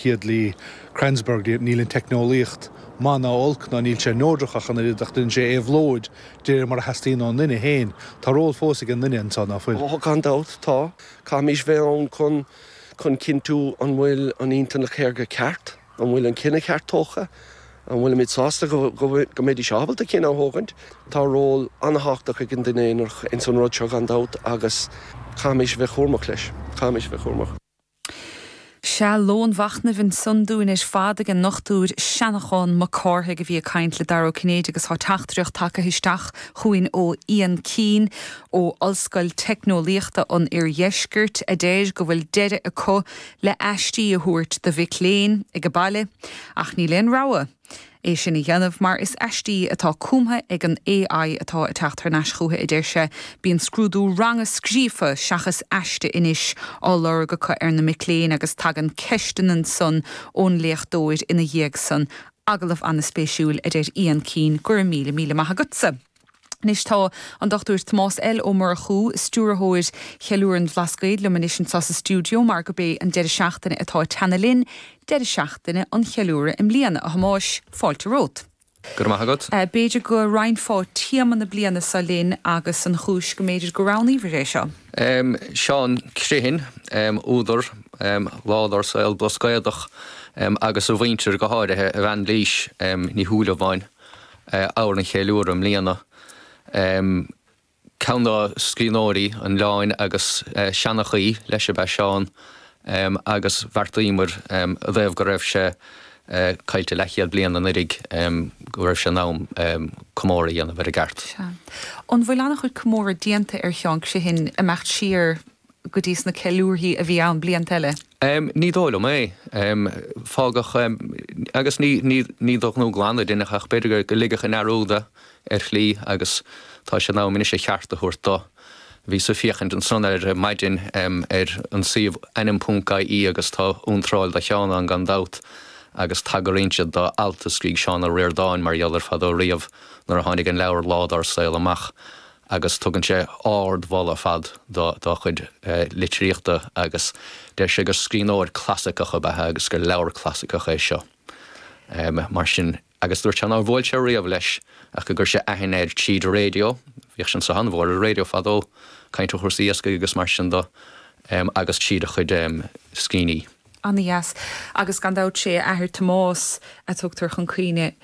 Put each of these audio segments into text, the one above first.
Gidley, Kranzberg, níl an teicneolaíocht maith ná olc, ná níl sé neodrach ach an oiread, ach déanann sé éabhlóid de réir mar a theastaíonn ón nduine féin. Tá ról fós ag an nduine anseo, ná fuil? Gan dabht, tá. Caithfimís bheith ann chun chun cinntiú an bhfuil an intleacht shaorga ceart, an bhfuil an cinneadh ceart tógtha, an bhfuilimid sásta go mbeidís ábalta cinneadh a thógaint. Tá ról ana-tháchtach ag an duine aonarach ins an rud seo gan dabht agus caithfimís bheith chúramach leis. Caithfimís bheith chúramach. Sea lón machnaimh ansan dúinn ar fad ag an nDochtúir Seanachán Mac Cárthaigh a bhí ag caint le Dara Ó Cinnéide agus tá teachtaireacht tagtha isteach chugainn ó Ian Keane ó Ollscoil Teicneolaíochta an Oirdheiscirt adeir go bhfuil deireadh acu le aistí a thabhairt do mhic léinn ag an baile ach níl aon rogha é sin a dhéanamh mar is aistí atá cumtha ag an AI atá ag teacht thar n-ais chucu, a deir sé. Bíonn scrúdú ranga scríofa, seachas aiste anois, á lorg acu ar na mic léinn agus tagann ceisteanna ansan ón léachtóir ina dhiaidh san. Agallamh ana-spéisiúil, a deir Ian Keane, go raibh míle míle maith agatsa. Anois tá an Dr. Tomás L. Ó Murchú, Stiúrthóir Cheiliúradh an Bhlascaoid liom anois anseo sa stiúideo mar gurb é an deireadh seachtaine atá ag teannadh linn deireadh seachtaine an cheiliúradh i mbliana, a Thomáis, fáilte romhat. Go raibh maith agat. B'fhéidir go roinnfeá téama na bliana seo linn agus an chúis go mb'fhéidir gur roghnaíobhar é seo? Seán Criomhthain, údar, Lá dár saol Blascaodach agus a mhuintir, go háirithe a bhean Lís Ní Shúilleabháin. ábhar an cheiliúradh i mbliana. Ceann de scríbhneoirí an oileáin agus seanchaí leis ab ea Seán agus bheartaíomar i dtaobh go raibh sé caillte leathchéad bliain anuiridh go raibh sé in am comóradh a dhéanamh air i gceart. Sea. An bhfuil an-chuid comóradh déanta ar Sheán Criomhthain, imeacht siar, go dtí sna ceiliúrthaí a bhí ann blianta eile? Ní dóigh liom é. Fágadh, agus ní d'aon ghnó glan a deineadh é ach b'fhéidir go ligeadh i ndearúd é ar shlí agus tá sé in am anois a cheart a thabhairt dó. Bhíos ag féachaint ansan ar maidin ar an suíomh ainm.ie agus tá iontráil do Sheán ann gan dabht agus tagraíonn siad do alt a scrígh Seán Ó Ríordáin mar gheall air fadó riamh nuair a tháinig an leabhar Lá dár saol amach. agus tugann sé ard-mholadh ar fad dá chuid litríochta agus deir sé gur scríbhneoir clasaiceach ab ea é agus gur leabhar clasaiceach é seo. Mar sin, agus dúirt sé nár bhuail sé riamh leis ach gur chuir sé aithne air tríd raidió, bhíodh sé anseo an-mhór ar raidió fadó, ag caint ar chúrsaí iascaigh agus mar sin de, agus tríd a chuid scríbhinní. Ana-dheas. Agus gan dabht sé a athair Tomás a tugtar chun cuimhne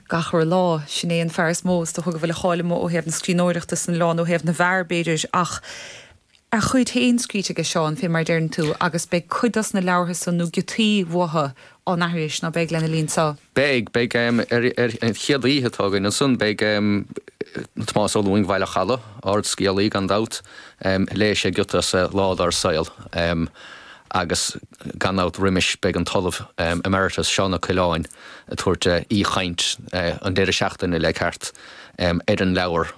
gach re lá. Sin é an fear is mó is dócha go bhfuil a cháil amuigh ó thaobh na scríbhneoireachta san oileán, ó thaobh na bhfear, b'fhéidir, ach a chuid féin scríte aige Seán, fé mar a deireann tú, agus beidh cuid dos na leabhartha san nó giotaí uathu á n-aithris ná beidh lena linn sa. Beidh, beidh ar an chéad oíche atá againn ansan beidh Tomás Ó Lúing Bhaile an Chalaidh, ardscéalaí gan dabht, léifidh sé giota as Lá Dár Saol agus gan dabht roimis beidh an tOllamh Emeritus Seán Ó Coileáin ag tabhairt aoichaint an deireadh seachtaine le ceart ar an leabhar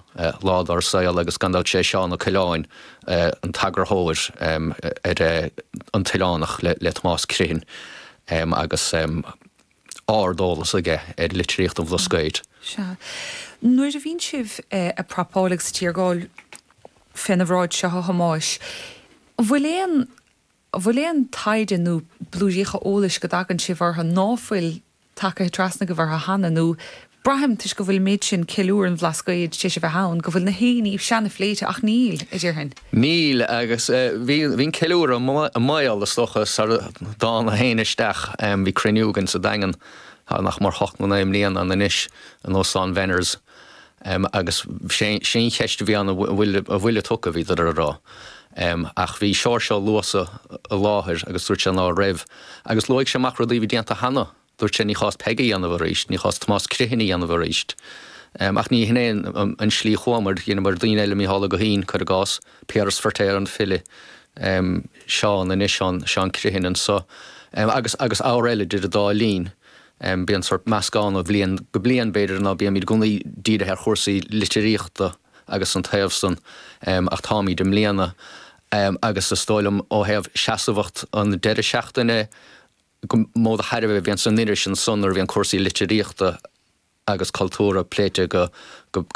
Lá Dár Saol agus gan dabht sé Seán Ó Coileáin an t-eagarthóir ar An tOileánach le Tomás Criomhthain agus. ard-eolas aige ar litríocht an Bhlascaoid. Sea. Nuair a bhíonn sibh a' prapáil agus a' tiargáil féna bhráid seo a Thomáis, an bhfuil aon, an bhfuil aon taighde nó blúiríocha eolais go dtagann sibh orthu ná fuil tacaithe trasna agaibh orthu cheana nó Braithim, toisc go bhfuil an méid sin ceiliúradh an Bhlascaoid, tar éis bheith ann, go bhfuil nach aon ní ansan phléite ach níl, a déarfainn. Níl, agus bhí an ceiliúradh i mbaol, is dócha, sara dtánag féin isteach. Bhí cruinniú againn sa Daingean tá nach mór ocht nó naoi mbliana ann anois, in Óstán Bhenners, agus sé an cheist a bhí ann, an bhfuil a tugtha, bhíodar a rá. Ach bhí Seoirse Ó Luasa i láthair agus dúirt sé ná raibh. Agus luaigh sé amach rudaí a bhí déanta cheana. Dúirt sé, ní chás Peig a dhéanamh arís, ní chás Tomás Criomhthain a dhéanamh arís. Ach ní hin é an slí chuamar, dheineamar daoine eile, Micheál Ó Guithín, cuir i gcás, Piaras Feiritéar, an file, Seán anois ann, Seán Criomhthain anseo, agus agus ábhair eile idir an dá linn. Bíonn sórt meascán ó bhliain go bliain b'fhéidir ná bímid i gcónaí dírithe ar chúrsaí litríochta agus an taobh san ach táimid i mbliana agus is dóigh liom ó thaobh seasamhacht an deireadh seachtaine gur mó de thairbhe a bhíonn san iris ansan nuair a bhíonn cúrsaí litríochta agus cultúrtha pléite go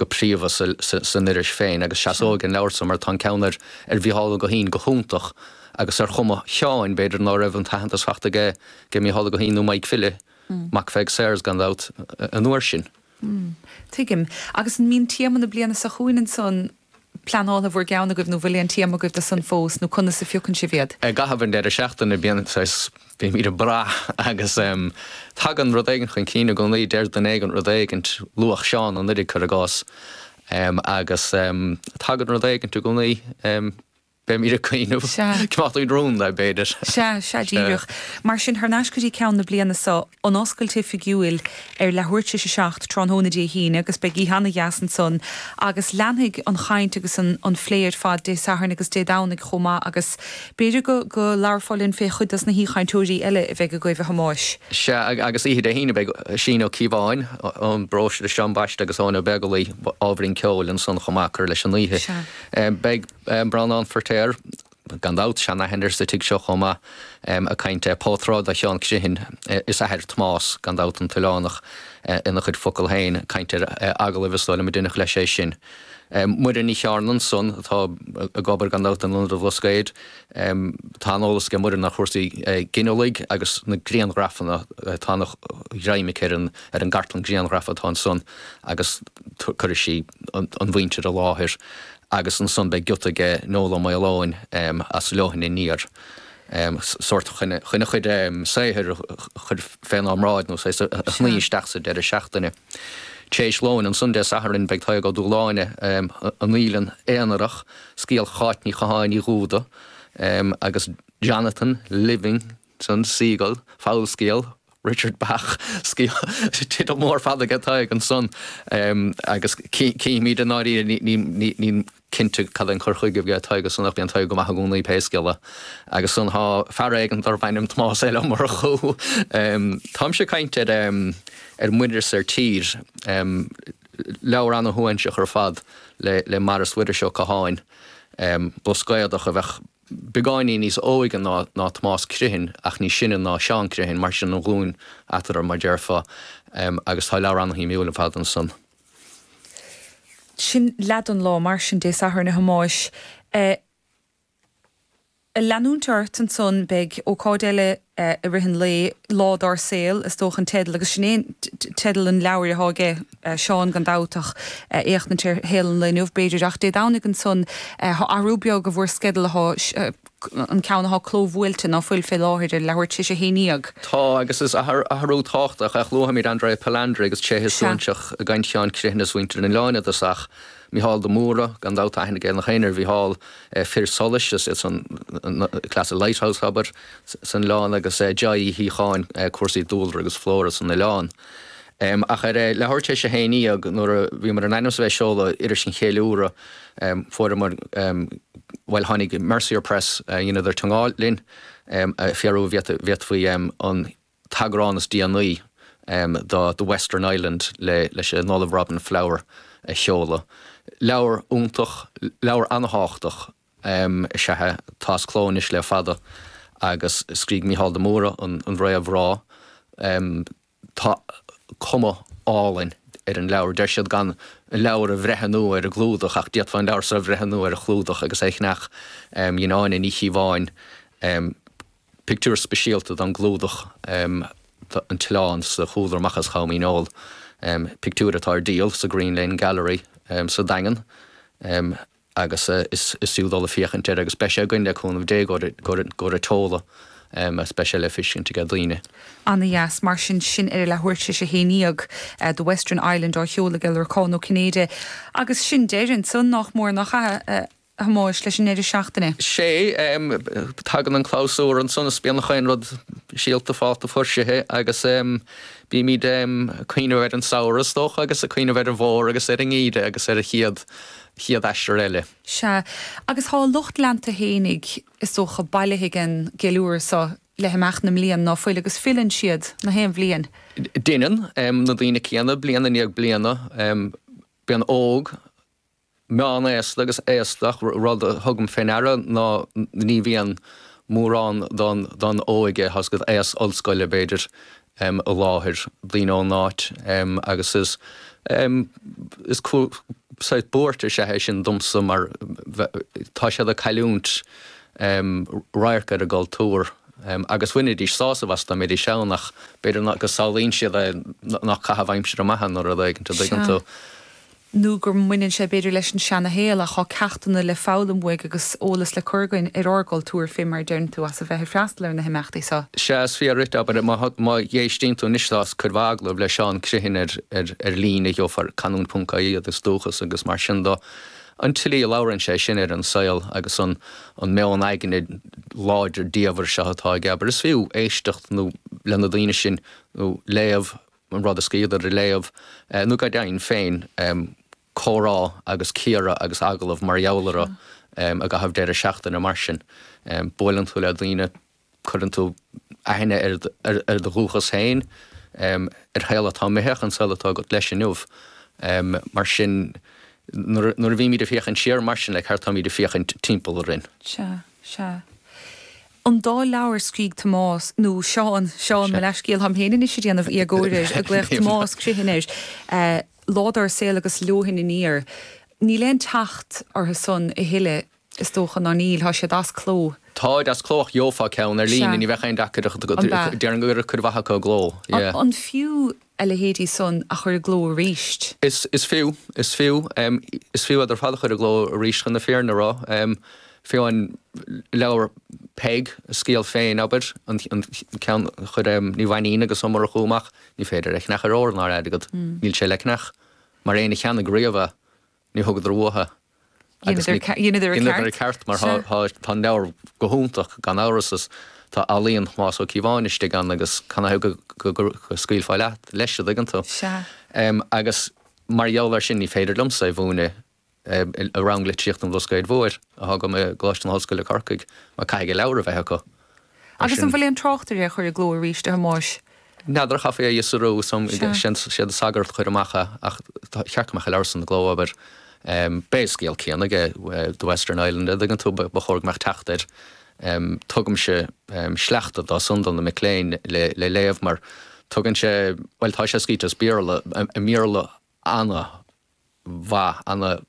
príomha san iris féin agus seasóidh an leabhar san mar tá an ceann ar Mhícheál Ó Guithín go hiontach agus ar chuma Sheáin b'fhéidir ná raibh an t-aitheantas faighte aige ag Mícheál Ó Guithín nó Maidhc File, mac Pheig Sayers gan dabht, an uair sin. Tuigim. Agus an mbíonn téama na bliana seo chugainn ansan? pleanáilte in bhur gceann agaibh nó bhfuil aon téama agaibh do san fós nó conas a phiocann sibh iad? I gcaitheamh an deireadh seachtaine bíonn saghas, bímíd ag brath agus em tagann rud éigint chun cinn i gcónaí, deir duine éigin rud éigint, luadh Seán anuiridh cuir i gcás, em agus em tagann rud éigint i gcónaí, em. Beimid ag caoineadh. Sea. Cnocadh rúnda, b'fhéidir. Sea, sea, díreach. Mar sin, thar n-ais go dtí ceann na bliana so, an oscailt oifigiúil ar leathuair t'réis a seacht tráthnóna Dé hAoine agus beidh oíche ana-dheas ansan agus leanfaidh an chaint agus an phlé ar fad Dé Sathairn agus Dé Domhnaigh chomh maith agus b'fhéidir go labharfá linn fé chuid dos na haoichainteoirí eile a bheidh agaibh, a Thomáis. Sea, agus oíche Dé hAoine beidh Oisín Ó Cíobháin ón bparóiste de Sean Baiste agus Eoin Ó Beaglaoi ábhairín ceoil ansan chomh maith ag cur leis an oíche. Sea. Beidh. Breandán Feirtéar, gan dabht, seanaithne sa tigh seo chomh maith ag caint é. Portráid de Sheán Criomhthain is a athair, Tomás, gan dabht, an tOileánach ina chuid focal féin. Caint ar agallaimh is dóigh liom a deineadh leis é sin. Muireann Ní Chearna ansan, atá ag obair gan dabht in Ionad an Bhlascaoid. Tá an-eolas aige Muireann ar chúrsaí ginealaigh agus na grianghrafanna. Tá ana ghreim aici ar an gcartlann grianghraf atá ansan agus cuirfidh sí an mhuintir i láthair. agus ansan beidh giota aige Noel Ó Maoileoin as Leoithne Aniar sórt chun a chuid saothair a chur fénár mbráid nó saghas a shní isteach sa deireadh seachtaine t'réis lóin. Ansan Dé Sathairn beidh Tadhg Ó Dúshláine, An Fhaoileann Aonarach, scéal Cháit Ní Chatháin Uí Dhúda agus Jonathan Living ston Seagull, fabhalscéal Richard Bach, scéal, teideal mór fada aige Tadhg ansan agus cífimid i ndáiríre nílim cinnte cad é an cur chuige a bheidh aige Tadhg ansan ach bíonn Tadhg go maith i gcónaí pé scéal é agus ansan tá fear éigin darbh ainm Tomás L. Ó Murchú. Táimse ag caint ar Ar Muir is ar Tír, leabhar ana-shuaithinseach ar fad le Maras Mhuiris Ó Catháin, Blascaodach a bheadh beagáinín níos óige ná ná Tomás Criomhthain ach níos sine ná Seán Criomhthain, mar sin an ghlúin eatarthu, mar déarfá, agus tá leabhar ana-shuimiúil ar fad ansan. Sin leath den lá, mar sin, Dé Sathairn, a Thomáis. A leanúint ort ansan, beidh ócáid eile eh, i rith an lae, Lá Dár Saol, is dócha an teideal, agus sin é an teideal an leabhair atá aige, eh, Seán gan dabht ach, eh, éachtaint ar shaol an lae inniu b'fhéidir ach Dé Domhnaigh ansan, eh, tá athrú beag i bhur sceideal atá, eh, an ceann atá clóbhuailte ná fuil fé láthair ar leathuair tis a haon dhéag? Tá agus is athrú, athrú tábhachtach ach luafaimid Andrea Palandri agus tréithe suaithinseacha i gcaint Sheáin Criomhthain is mhuintir an oileáin fhad is ach Micheál de Mórdha gan dabht, tá aithne aige nach éinne ar Mhicheál, eh, Fir Solais, is iadsan na, na, na, cleas an lighthouse, abair. san oileán agus Joy Uí Shíocháin, cúrsaí dúlra agus flora san oileán. Ach ar leathuair tar éis a haon dhéag nuair a bhíomar in ainm is a bheith ag seoladh iris an cheiliúradh fuaireamar, bhuel tháinig Mercier Press, dheineadar teangmháil linn, ag fiafraí an bhféadfaí an t-eagrán is déanaí de The Western Island leis an Ollamh Robin Flower a sheoladh. Leabhar iontach, leabhar ana-thábhachtach. Am is ea é. Tá as cló anois le fada agus scrígh Mícheál de Mórdha an réamhrá. Tá cuma álainn ar an leabhar. Deir siad gan an leabhar a bhreithniú ar an gclúdach ach d'fhéadfá an leabhar so a bhreithniú ar an chlúdach agus é a cheannach. Dhein Áine Ní Chíobháin pictiúr speisialta don gclúdach de An tOileán sa chúlra amach as Com Dhíneol, pictiúr atá ar díol sa Green Lane Gallery sa Daingean. agus is fiú dul ag féachaint air agus beidh sé againn le cúnamh Dé i gcomhair an tseoladh agus beidh sé le feiscint ag daoine. Ana dheas. Mar sin, sin ar a leathuair tar éis a haon déag, The Western Island á sheoladh ag Lorcán Ó Cinnéide. Agus sin deireadh ansan nach mór nach ea, a Thomáis, leis an ndeireadh seachtaine? Sé. Tagann an clabhsúr ansan is bíonn chaon rud síolta fálta fuirsithe agus bímid ag cuimhneamh ar an samhradh is dócha agus ag cuimhneamh ar an bhfómhar agus ar an ngeimhreadh agus ar an chéad chéad aistear eile. Sea, agus tá a lucht leanta fhéinig, is dócha, bailithe ag an gceiliúradh seo le himeacht na mblian, ná fuil? Agus filleann siad, na haon bhliain. Deineann na daoine céanna, bliain i ndiaidh bliana, bíonn óg, meán-aosta agus aosta, ach rud a thugaim fé ndeara ná ní bhíonn mórán don óige, aos ollscoile, b'fhéidir, um i láthair, daoine ón áit um agus is um is saghas buairt is ea é sin domsa mar tá siad ag cailliúint um radharc ar a gcultúr um agus bhainfidís sásamh as dá mbeidís ann ach b'fhéidir nach go samhlaíonn siad é nach caitheamh aimsire maith é nó rud éigin, an dtuigeann tú? nó go mbaineann sé b'fhéidir leis an seana-shaol ach tá ceachtanna le foghlaim uaidh agus eolas le cur againn ar ár gcultúr féin mar a deireann tú as a bheith ag freastal ar na himeachtaí seo. Sea, is fíor dhuit, abair, má éistíonn tú anois tá cuid mhaith agallamh le Seán Criomhthain ar líne gheofar canúint ponc ie iad is dúchas agus mar sin dó. An tslí a labhrann sé sin ar an saol agus an meon aigne láidir diamhair seo atá aige abair is fiú éisteacht nó le na daoine sin nó léamh an rud a scríobhadar a léamh nó go deimhin féin comhrá agus cíoradh agus agallamh mar gheall orthu i gcaitheamh deireadh seachtaine mar sin. Buaileann tú le daoine, cuireann tú aithne ar do dhúchas féin, ar shaol atá imithe, ach an saol atá agat leis inniu. Mar sin nuair a bhímid ag féachaint siar mar sin, le ceart táimid ag féachaint timpeall orainn? Sea, sea. an dá leabhar a scrígh Tomás, nó Seán, Seán, mo leathscéal, táim féin anois a' déanamh éagóir air, a' glaoch Tomás Criomhthain air, Lá Dár Saol agus Leoithne Aniar. Níl aon teacht orthu san a thuilleadh is dócha, ná níl, tá siad as cló. Táid as cló ach gheofá ceann ar Sea. líne, ní bheadh aon deacracht agat, An b'ea? déarfainn go raibh cuid mhaith acu i gcló, yeah. An fiú a leithéidí san a chur i gcló arís. Is is fiú, is fiú, is fiú iad ar fad a chur i gcló arís chun na fírinne a rá. Fiú an leabhar Peig, a scéal féin, abair, an ceann a chuir Ní Mhainín agus Ó Murchú amach, ní féidir é a cheannach ar ór ná ar airgead, níl sé le ceannach, mar éinne a cheannaigh riamh é. Ní thugadar uathu é agus dheineadar an ceart mar tá an leabhar go hiontach gan amhras is tá ealaíon Thomáis Ó Cíobháin istigh ann agus canathaobh go scaoilfeá leis a dtuigeann tú. Agus mar gheall air sin ní féidir liomsa é mhúineadh i rang litríochta an Bhlascaoid Mhóir a thugaim i gColáiste na hOllscoile Corcaigh mar caithfidh an leabhar a bheith acu. Agus an bhfuil aon trácht ar é a chur i gcló arís, a Thomáis? N'fheadar, chaithfí a fhiosrú. 'Sé An Sagart a chuir amach é ach ba cheart go mbeadh an leabhar san i gcló, abair. B'é an scéal céanna ag The Western Island, a' dtuigeann tú, ba chóir go mbeadh teacht air. Tugaimse sleachta dó san do na mic léinn le léamh mar tugann sé, bhuel tá sé scríte as Béarla, i mBéarla, ana mhaith, ana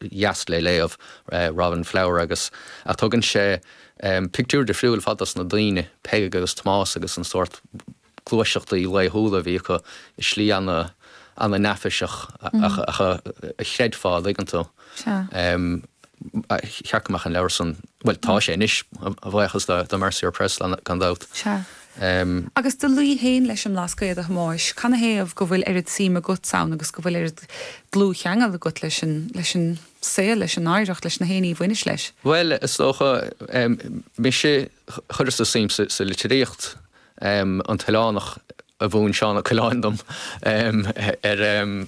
dheas le léamh, Robin Flower agus ach tugann sé pictiúr difriúil ar fad dos na daoine, Peig agus Tomás agus an sórt gluaiseachtaí laethúla a bhí acu i slí ana, ana neafaiseach ach a chreidfeá, a dtuigeann tú. ba cheart go mbeadh an leabhar san, bhuel tá sé anois, a bhuíochas do Mercier Press gan dabht. Sea. Agus do luí féin leis an mBlascaod, a Thomáis. Canathaobh go bhfuil oiread suim agat ann agus go bhfuil oiread dlúthcheangail agat leis an saol, leis an oidhreacht, le haon ní a bhaineas leis? Bhuel, is dócha, mise Chuireas-sa suim sa litríocht. An tOileánach a mhúin Seán Ó Coileáin dom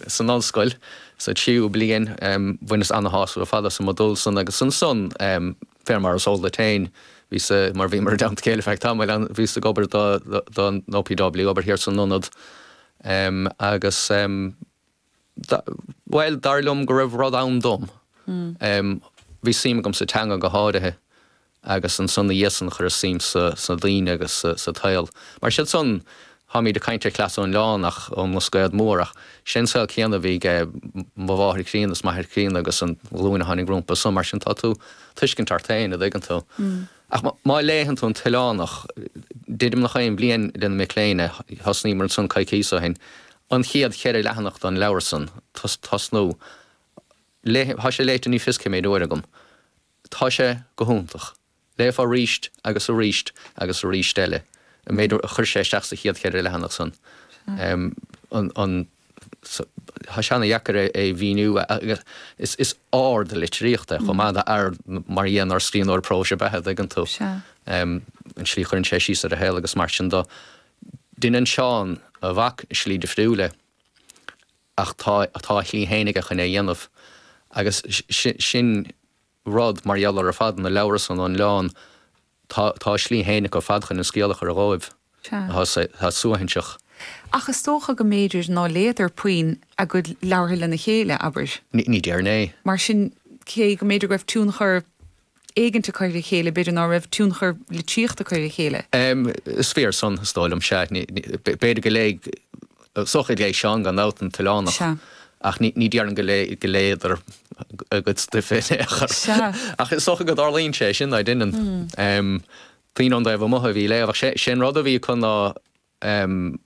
san ollscoil sa tríú bliain. Bhaineas ana-shásamh ar fad as an modúl san agus ansan, fé mar is eol duit féin, bhíos, mar bhíomar i dteannta céile feadh tamaill ann, bhíos ag obair don OPW, ag obair thiar san ionad agus. Bhuel, dar liom go raibh rud ann dom. Bhí suim agam sa teanga go háirithe agus ansan na dhiaidh san chuireas suim sna daoine agus sa tsaol. Mar sin san táimid ag caint ar chleas ón oileán, ach ón mBlascaod Mór ach sé an saol céanna a bhí ag mo mháthair chríonna is m'athair críonna agus an ghlúin a tháinig rompu san mar sin tá tú ag tuiscint ort féin, a dtuigeann tú. Ach má léann tú An tOileánach, deirim é gach aon bhliain leis na mic léinn, thosnaíomar ansan coicíos ó shin, an chéad cheithre leathanach den leabhar san, tosnú leis, tá sé léite ní fios cé méid uaire agam. Tá sé go hiontach. Léifeá arís agus arís agus arís eile an méid a chuir sé isteach sa chéad cheithre leathanach san. An. Tá sé an-dheacair é a mhíniú agus is ard litríocht é chomh maith, nó ard mar a dhéanfadh ar scríbhneoir próis é, b'fhéidir, an dtuigeann tú, an tslí a chuireann sé síos ar a shaol agus mar sin de. Deineann Seán, a mhac, i slí difriúil é ach tá a shlí féin aige chun é a dhéanamh agus sin, rud, mar gheall ar ar fad na leabhra san a léamh, tá tá a slí féin acu ar fad chun an scéal a chur dóibh. Tá sé, tá sé suaithinseach. Ach is dócha go mb'fhéidir ná léadar puinn a gcuid leabhartha lena chéile, abair. Ní, ní déarfainn é. Mar sin, cé go mb'fhéidir go raibh tionchar éigint acu ar a chéile, b'fhéidir ná raibh tionchar litríochta acu ar a chéile. Is fíor san, is dóigh liom. Sea, ní, ní, b'fhéidir go léadh, Is dócha gur léigh Seán gan dabht An tOileánach ach ní déarfainn go léadar a gcuid stuif in aon chor. Ach is dócha go dtarlaíonn sé, sin, an dtuigeann. Daoine ón dtaobh amuigh a bhí á léamh ach sé an rud a bhí acu ná